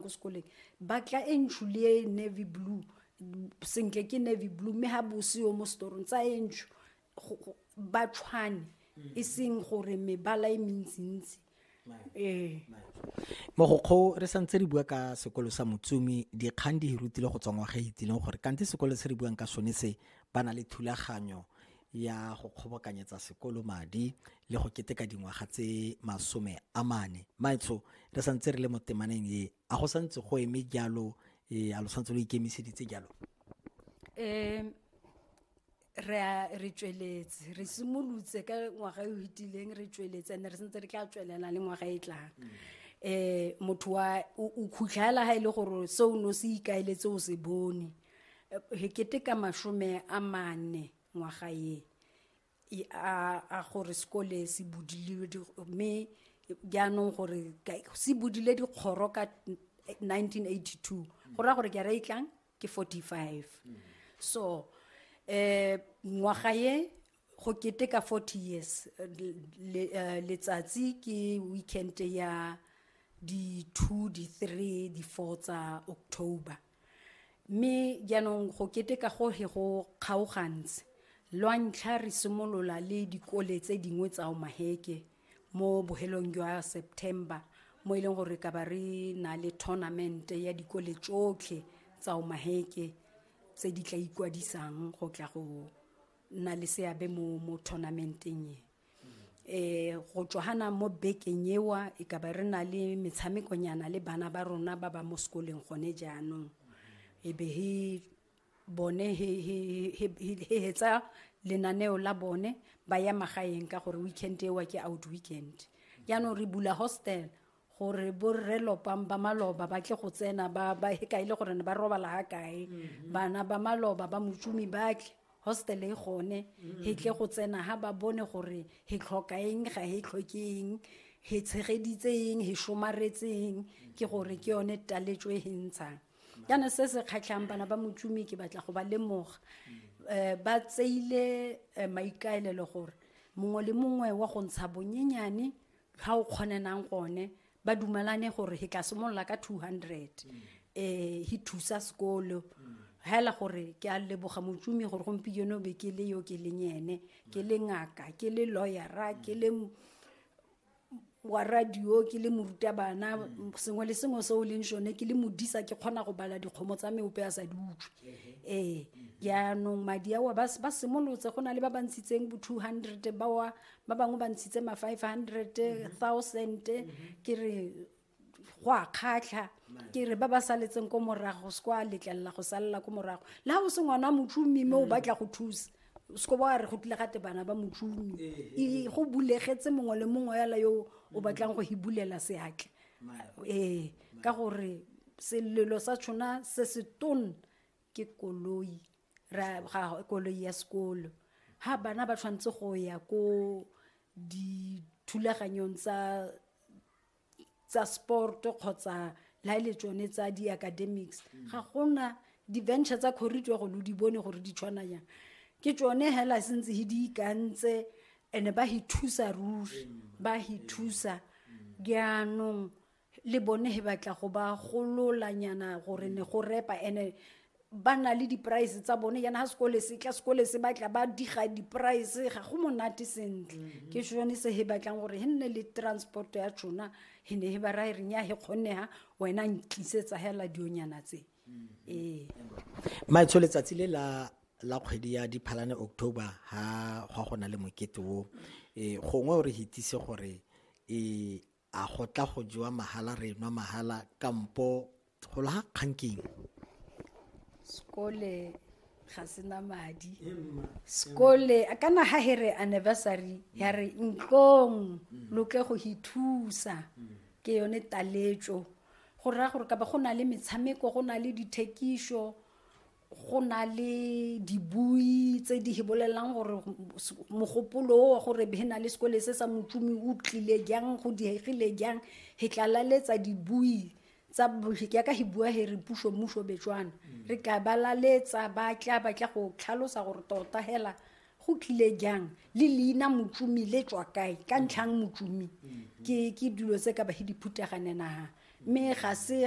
ko sekoleng ba tla e ntsho le e navy blue sentle ke navy blue mme ga bose yo mo setorong tsa e ntsho ba tshwane mm. e seng gore mebala e mentsintsi ee mogokgo re santse re bua ka sekolo sa motsumi dikgang di hirutile go tswa ngwaga e itileng gore kante sekolo se re buang ka sone se ba na le thulaganyo ya go kgobokanyetsa sekolo madi le go keteka dingwaga tse masome a mane maetsho re santse re le mo temaneng e a go santse go eme jalo e a lo santse lo ikemiseditse jalo um re re tsweletse re simolotse ka ngwaga e o fetileng re tsweletse and re sentse re tla tswelela le ngwaga e tlang um motho wa o khutlhela ga e le gore se o ne o se ikaeletse o se bone hekete ka masome a mane ngwaga ye a gore sekole se budile mme jaanong gore se budile dikgoro ka 1982 go raya gore ke ra itlang ke 45 so um ngwaga ye go keteka 40 years eh, letsatsi ke weekend ya di-two di-three di-four tsa october mme jaanong go keteka go he go kgaogantse lwa ntlha re simolola le dikole tse dingwe tsa omaheke mo bohelong jwa september mo e leng gore ka ba re na le tournament ya dikole tsotlhe tsa omaheke tse di tla ikwadisang go tla go nna le seabe mo mo tournamenteng e eh go tswana mo bekeng ewa e ka ba re na le metshamekonyana le bana ba rona ba ba mo sekoleng gone jaanong e be he bone he he he he- he hetsa lenaneo la bone ba ya magaeng ka gore weekend ewa ke out weekend jaanong re bula hostel gore borre lopang ba maloba ba tle go tsena ba ba ka ile gore ne ba robala ha kae mhm. bana ba maloba ba motsumi ba tle hostel e gone mhm. he tle go tsena ha ba bone gore he tlhoka eng ga he tlhokeng he tshegeditseng he shomaretseng ke gore ke yone taletso e hentshang yana se se kgatlhang bana ba motsumi ke batla go ba lemoga um ba tseile eh, maikaelelo gore mongwe le mongwe wa go ntsha bonyenyane ga o kgonenang gone ba dumalane gore he tla simolola ka 200 um he thusa sekolo hela gore ke a leboga motsumi gore gompieno be ke le yo ke leng ene ke le ngaka ke le lawyera ke le wa radio ke le morutabana sengwe le sengwe se o leng sone ke le modisa ke kgona go bala dikgomo tsa meope a sa di utlwe ee jaanong madi ao ba simolotse go na le ba ba ntshitseng bo 200 bawa ba bangwe ba ntshitse ma 500 thousand ke re go a kgatlha ke re ba ba saletseng ko morago se kwa letlelela go salela ko morago le ga o se ngwana motšhomi mme o batla go thusa seko ba re go tlile gate bana ba motšhomi e go bulegetse mongwe le mongwe yala yo o batlang go hibulela seatle ee ka gore selelo sa tshona se se tone ke koloi ra ga koloi ya sekolo ha bana ba tshwanetse go ya ko dithulaganyong tsa tsa sport kgotsa la ile e tsone tsa di academics mm. ga gona di venture tsa corridor go lo di bone gore di tshwana yang ke tsone hela sentse he di ikantse ene ba hi thusa ruri mm. ba hi thusa mm. jaanong le bone he batla go ba gololanyana gore ne go repa ene ba na le di-price tsa bone yana ga sekole se tla sekole se batla ba diga di-price ga go monate sentle mhm. ke sone se he batlang gore he nne le transport ya tšona he ne he ba rae renya he kgonega wena ntlisetsa hela dionyana tse mhm. ee maetsho letsatsi le la la kgwedi ya diphalane october ga gwa go na le mokete o um gongwe o re hitise gore um a go tla go jewa mahala re nwa mahala kampo go laga kgang keng sekole ga sena madi sekole kana ha he re anniversary ya re ntlong loke go ithusa ke yone taletso go raya gore ka ba go na le metshameko go na le dithekišo go na le dibui tse di bolelelang gore mogopolo o wa gore he na le sekole se sa motsumi o tlile jang go diegile jang he tlalaletsa dibui tsa yaka he bua he re puso mmuso betswana mm. re ka balaletsa ba tla ba tla go tlhalosa gore tota hela go tlile jang le leina motsumi le tswa kae ka mm. ntlhang motsumi mm. ke dilo tse ka ba he di phuthaganenang mme ga se